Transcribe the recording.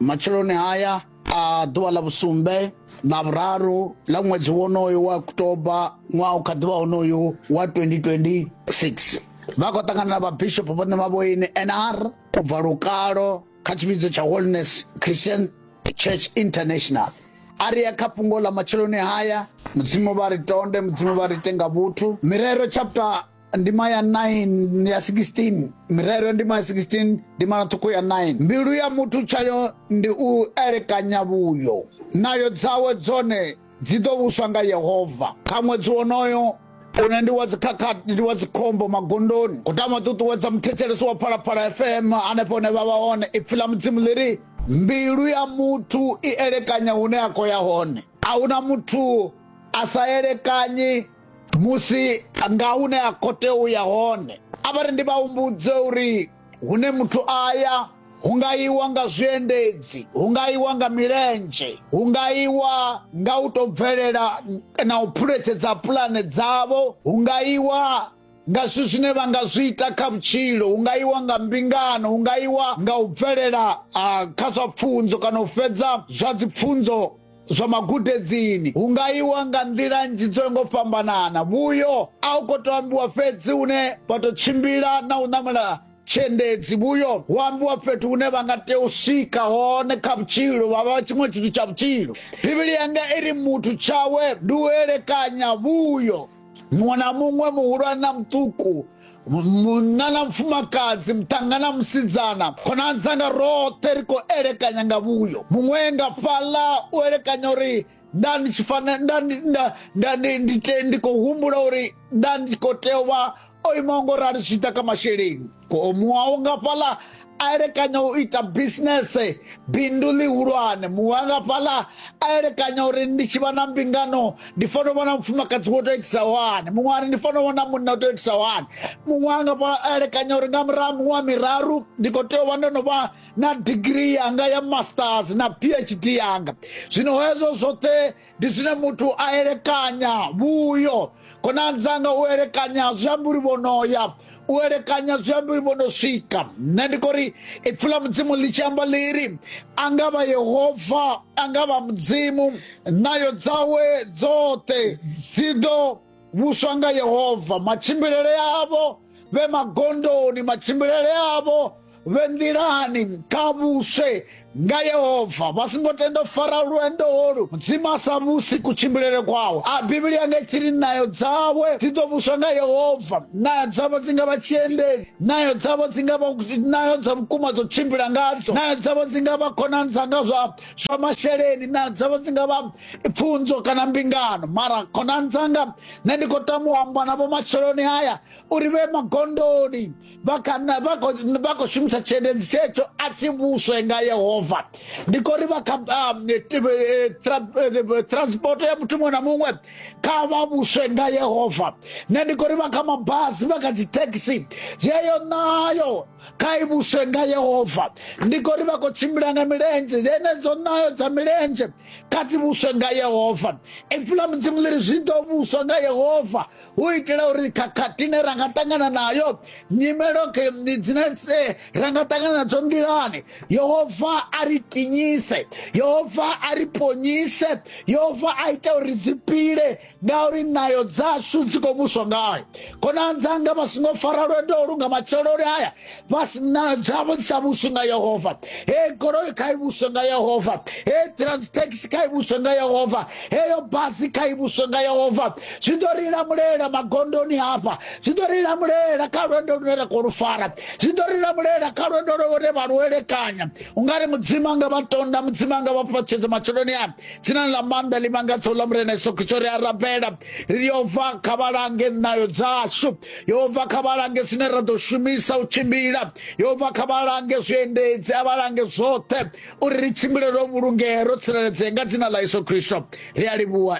matsheloni haya a ḓuvha ḽa vhusumbe ḽa vhuraru ḽa ṅwedzi wonoyo wa oktoba ṅwaha u kha ḓuvha wonoyo wa 2026 vha khou ṱangana na vhabishopo vhoṋe vha vhoine nr u bva lukalo kha tshivhidzo tsha holiness christian church international a ri ya kha fhungo ḽa matsheloni haya mudzimu vha ri tonde mudzimu vha ri tenga vhuthu mirero chapter ndima ya 9 ya 16 mirero ya ndima ya 16 ndima na ṱhukhu ya 9 mbilu ya muthu tshayo ndi u elekanya vhuyo nayo dzawe dzone dzi ḓo vhuswa nga yehova kha ṅwedzi wonoyo une ndi wa dzikhakhathi ndi wa dzikhombo magondoni u tama ṱuṱuwedza muthetshelesi wa phalaphala fm hanefho hune vha vha hone ipfi ḽa mudzimu ḽi ri mbilu ya muthu i elekanya hune a khou ya hone a huna muthu a sa elekanyi musi nga hune a khou tea u ya hone a vha ri ndi vha humbudze uri hune muthu a ya hu nga iwa nga zwiendedzi hu nga iwa nga milenzhe hu nga iwa nga u tou bvelela na u phuletshedza pulane dzavho hu nga iwa nga zwithu zwine vha nga zwi ita kha vhutshilo hu nga iwa nga mbingano hu nga iwa nga u bvelela kha zwa pfunzo kana u fhedza zwa dzipfunzo zwa magudedzini hu nga iwa nga nḓila nnzhi dzo ngo fhambanana vhuyo a u khou tou ambiwa fhedzi hune vha tou tshimbila na u ṋamela tshiendedzi vhuyo hu ambiwa fhethu hune vha nga tea u swika hone kha vhutshilo vha vha tshiṅwe tshithu tsha vhutshilo bivhili yanga i ri muthu tshawe ndi u elekanya vhuyo muṅwe na muṅwe muhulwane na muṱuku munna na mufumakadzi muṱanga na musidzana khonani dzanga roṱhe ri khou elekanya nga vhuyo muṅwe nga fhaḽa u elekanya uri nda ndi tshi fanela ndi khou humbula uri nda ndi khou tea u vha o imaho ngo rali zwi ḓa kha masheleni muwawo nga fhaḽa a elekanya u ita bisinese bindu ḽihulwane muwa nga fhaḽa a elekanya uri ndi tshi vha na mbingano ndi fanela u vha na mufumakadzi wo tou itisa hani muṅwe ari ndi fanela u vha na munna u tou itisa hani muṅwe a nga fhaḽa a elekanya uri nga murahu muṅwe miraru ndi khou tea u vha ndo no vha na digiri yanga ya masters na phd yanga zwino hezwo zwoṱhe ndi zwine muthu a elekanya vhuyo khonani dzanga u elekanya zwi amba uri vhonoya u elekanya zwi amba uri vhono swika nṋe ndi khou ri ipfi ḽa mudzimu ḽi tshi amba ḽiri a nga vha yehova a nga vha mudzimu nayo dzawe dzoṱhe dzi ḓo vhuswa nga yehova matshimbilele avho vhe magondoni matshimbilele avho vhe nḓilani kha vhuswe nga yehova vha songo tenda u fara lwendo holu mudzimu a sa vhusi kutshimbilele kwawe a bivhili yanga i tshi ri nayo dzawe dzi ḓo vhuswa nga yehova nayo dzavho dzi nga vha tshiendedzi nayo dzavho dzi nga vha nayo dza vhukuma dzo tshimbila ngadzo nayo dzavho dzi nga vha khonani dzanga zwa zwa masheleni na dzavho dzi nga vha pfunzo kana mbingano mara khonani dzanga nṋe ndi khou tama u amba na vhomatsheloni haya uri vhe magondoni vha khou shumisa tshiendedzi tshetsho a tshi vhuswe nga yehova ndi khou ri vha kha um, eh, eh, eh, transport ya muthu muṅwe na muṅwe kha vha vhuswe nga yehova nṋe ndi khou ri vha kha mabasi vha kha dzithekisi yeyo nayo kha i vhuswe nga yehova ndi kho ri vha khou tshimbila nga milenzhe dzenedzo nayo dza milenzhe kha dzi vhuswe nga yehova ipfi ḽa mudzimu ḽi ri zwi ḓo vhuswa nga yehova hu itela uri khakhathi ine ra nga ṱangana nayo nyimelo dzine ra nga ṱangana nadzo nḓilani yehova a ri tinyise yehova a ri ponyise yehova a ita uri dzi pile ngauri nayo dzashu dzi khou vhuswa ngayo khonani dzanga vha songo fara lwendo lu nga matsheloni aya vha nayo dzavho dzi sa vhuswi nga yehova he goloi kha i vhuswe nga yehova he transtaxi kha i vhuswe nga yehova heyo basi kha i vhuswe nga yehova zwi ḓo ri lamulela magondoni hafha zwi ḓo ri lamulela kha lwendo lune ra khou lu fara zwi ḓo ri lamulela kha lwendo lune vha lu elekanya u nga ri mudzimu anga vha tonda mudzimu anga vha fhaṱshedza matsheloni aya dzinani ḽa maanḓa ḽi vhanga ṱhoho ḽa murena yesu kristo ri a rabela ri ri yehova kha vha lange ṋayo dzashu yehova kha vha lange zwine ra ḓo shumisa u tshimbila yehova kha vha lange zwiendedzi a vha lange zwoṱhe uri ri tshimbile ro vhulungea ro tsireledzea nga dzina ḽa yesu kristo ri a livhuwa